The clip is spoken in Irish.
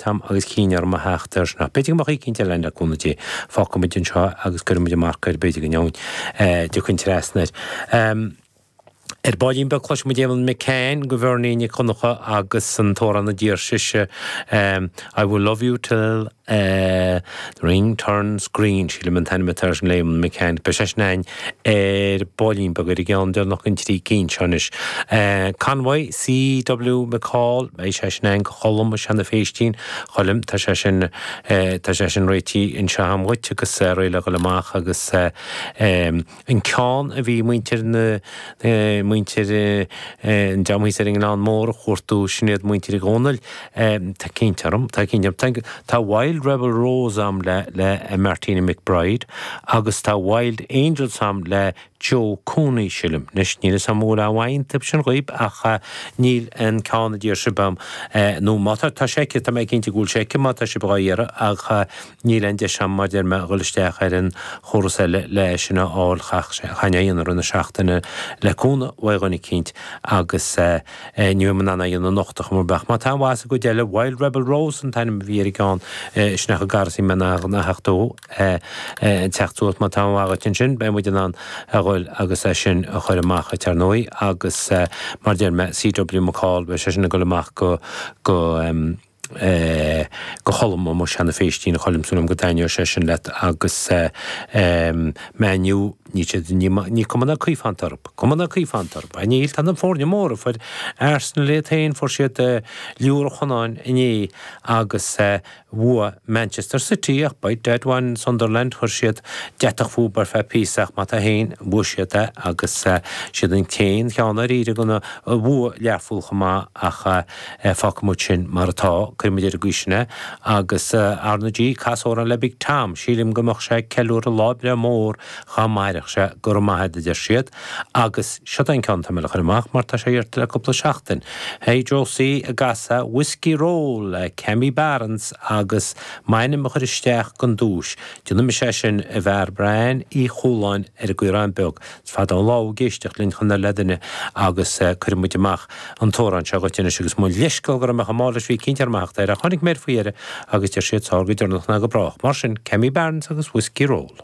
t-am agus chinn orm a theacht air anocht. B'fhéidir go mbeadh éicínt eile ann le cúnamh Dé. Fágfaidh muid anseo agus cuirfidh muid an marc air, b'fhéidir go dtiocfainn trasna air. Ar baillín beag cloisfidh muid Eamon McCann, go Bheirní Nic Dhonncha agus an t-amhrán a d'iarr sise I will love you till the ring turns green, sílim an t-ainm atá ar sin le Eamon McCann. Beidh sé sin a'inn ar baillín beag ar an gceann deireanach an trí cinn seo anois. Convoy, CW McCall, beidh sé sin againn go Cholm, i Seanadh Phéistín, Choilm, tá sé sin, tá sé sin réití anseo agam dhuit agus réidh le dhul amach agus an ceann a bhí muintir na, muintir, deamhaíos ar an ngleann mór a chuartú, sin iad muintir Uí Dhónaill. Tá cinnte orm, tá cinnte orm. Tá Wild Rebel Rose a'm le, le Martina McBride, agus tá Wild Angels a'm le Joe Cooney, sílim. Anois, níl 'fhios a'm an bhfuil aon mhaith iontab sin dhaoib, ach níl an ceann a d'iarr sibh a'm, nó má tá, tá sé aici, tá mé cinnte go bhfuil sé aici má tá sibh dhá iarraidh, ach Níl aon deis agam mar deir mé dhul isteach ar an gcóras eile le é sin a fháil, chaithfinn é dhéanamh roimh na seachtaine le cúnamh uaidh dhuine eicínt agus ní bheidh mé in ann é dhéanamh anocht ach amárach. Beidh. Má tá aon mhaith sa gcuid eile, Wild Rebel Rose an t-ainm a bhí ar an gceann sin ach chomh gar is a bhí mé in ann a theacht suas, má tá aon mhaith dhuit ansin beidh muid in ann a dhul agus é sin a chur amach dhuit ar ndóigh agus mar deir mé, CW McCall, beidh sé sin ag dul amach go, é go Cholm, amuigh i Seanadh Phéistín a Choilm súil a'm go dtaitneoidh sé sin leat agus em Man U níl siad ní maith ní cuma ná caoi iontab cuma ná caoi iontab a níl tá na foirne móra fuair Arsenal iad féin fuair siad eh liúradh Chonáin inné agus eh bhua Manchester City ach by dad Sunderland chuir siad deatach fúb ar feadh píosa ach má tá féin bhua siad é agus eh siad an t-aon cheann ar iarraidh gona a bhua Learpholl chomh maith ach eh Fágfaidh muid sin mar atá, cuirfidh muid ar an gcaoi sin é, agus ar ndóigh, cas amhrán le Big Tom, sílim go mbeadh sé ag ceiliúradh lá breithe mór dá mairfeadh sé, go raibh maith agat, a deir siad, agus siod é an ceann atá mé le cur amach, mar tá sé iarrtha le cúpla seachtain. Hey Josie an gcasfá Whiskey Roll le Cammy Barnes agus m'ainm a chur isteach gon duais, déanfaidh mise é sin, a Bhairbre Ann Uí Chualáin ar an gCaorán Beag, Is fada an lá thú ag éisteacht linn chun ar Laidine agus cuirfidh muid amach an t-amhrán seo dhuit anois agus mo leithscéal go raibh mé chomh mall leis, bhí ag cinnt orm a theacht air ach tháinig mé air faoi dheireadh agus deir siad is fearr go deireanach ná go brách. Mar sin, Cammy Barnes agus Whiskey Roll.